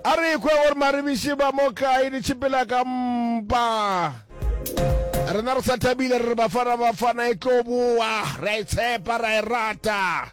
A re ekwe gore maribiši ba mo kae di tšhipela ka mpa. Rena re sa thabile re re Bafana Bafana e tlo boa, re a e tshepa, ra e rata.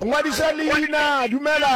Ngwadiša leina, dumela.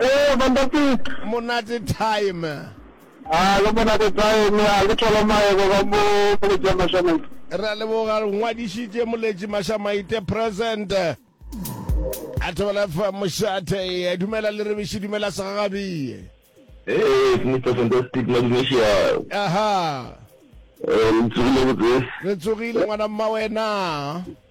Ee, fantastic. Monate time. A le monate time, a le thola maebo ba mo moletši ya Mashamaite. Re a leboga ngwadišitše moletši Mashamaite present. A thobela fa mošate e dumela le rebiši dumela segagabie. Ee, Mr. Fantastic Madumeša. Aha. Re tsogile botse. Re tsogile ngwana mma wena.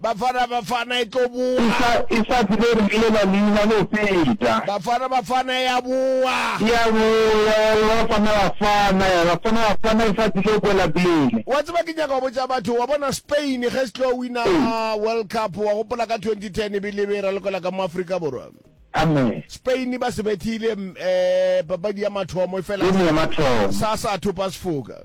Bafana Bafana e tlo bowa. E sa, e sa tsebe re lela leina le feta. Bafana Bafana e a bowa. E a bowa ya re Bafana Bafana, Bafana Bafana e sa tsebe kwela pele. Wa tseba ke nyaka go botša batho, wa bona Spain ge se tlo wina World Cup, wa gopola ka twenty ten e be e le e be e ralokelwa ka mo Afrika Borwa? Amen. Spain ba se bethile, um, papadi ya mathomo e fela sa, sa sa thopa sefoka.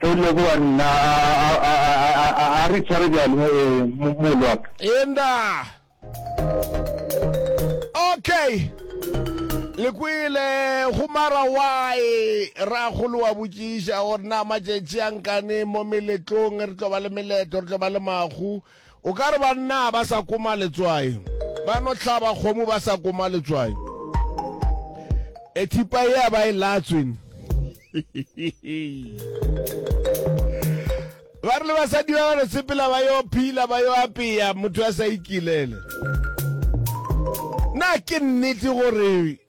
Ge e le go wa nna, a re tshware bjalo, mogolo wa ka. Eenda. Okay. Le kwele, go mara why? Rragolo wa botšiša gore na matšatši a nkane mo meletlong re tlo ba le meleto, re tlo ba le mahu? O ka re bannaa ba sa koma letswai ba no hlaba kgomo ba sa koma letswai. E thipa ea ba e latswin. Ba re le basadi ba ba no sepela ba yo phila ba yo apea motho a sa ikilele. Na ke nnete gore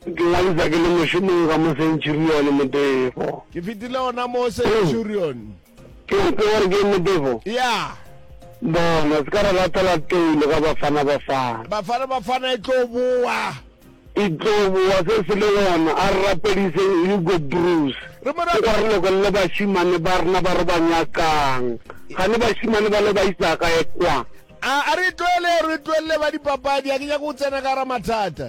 Ke ngwadiša ke le mošomong ka mo Centurion, Motefo. Ke fetile gona mo Centurion. Ke ntse gore ke Motefo? Ya. Bona, se ka re latela toulo ka Bafana Bafana. Bafana Bafana e tlo boa. E tlo boa, se se le gona. A re rapediseng Hugo Broos. Re mo rate. O re lokelele bašemane ba rena ba re ba nyakang. Gane bašemane ba le ba isa kae kwa? A re e tlohele, re e tlohelle ba dipapadi. Ga ke nyake go tsena ka gare ga mathata.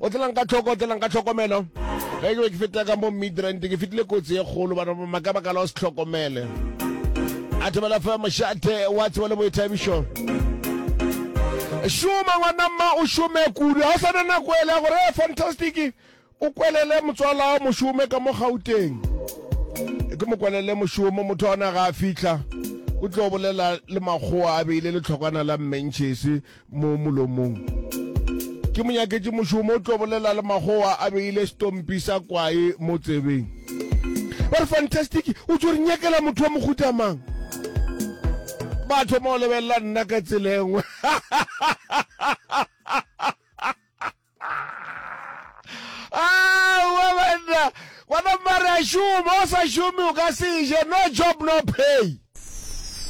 o tlelang ka tlhoko o tlelang ka tlhokomelo ge ke be ke fetela ka mo midrand ke fetile kotsi e kgolo bana ba maka baka la o se tlhokomele a thobela fa mošate wa tsebo le boithabišo šoma ngwana mma o šome kudu ga o sa na nako ele ya gore e fantastic o kwelele motswala wa mošome ka mo gauteng ke mo kwelele mošomo motho ona ga a fitlha o tlo bolela le makgowa a beile letlhokwana la mmentšhese mo molomong. Ke mo nyaketše mošomo, o tlo bolela le magowa a beile setompi sa kwae mo tsebeng. Ba re, Fantastic, o tšo re nyakela motho wa mohuta mang? Ba thoma go lebelela nna ka tsela e nngwe. Aowa banna, gona mare a šoma, o sa šome o ka se je, no job no pay.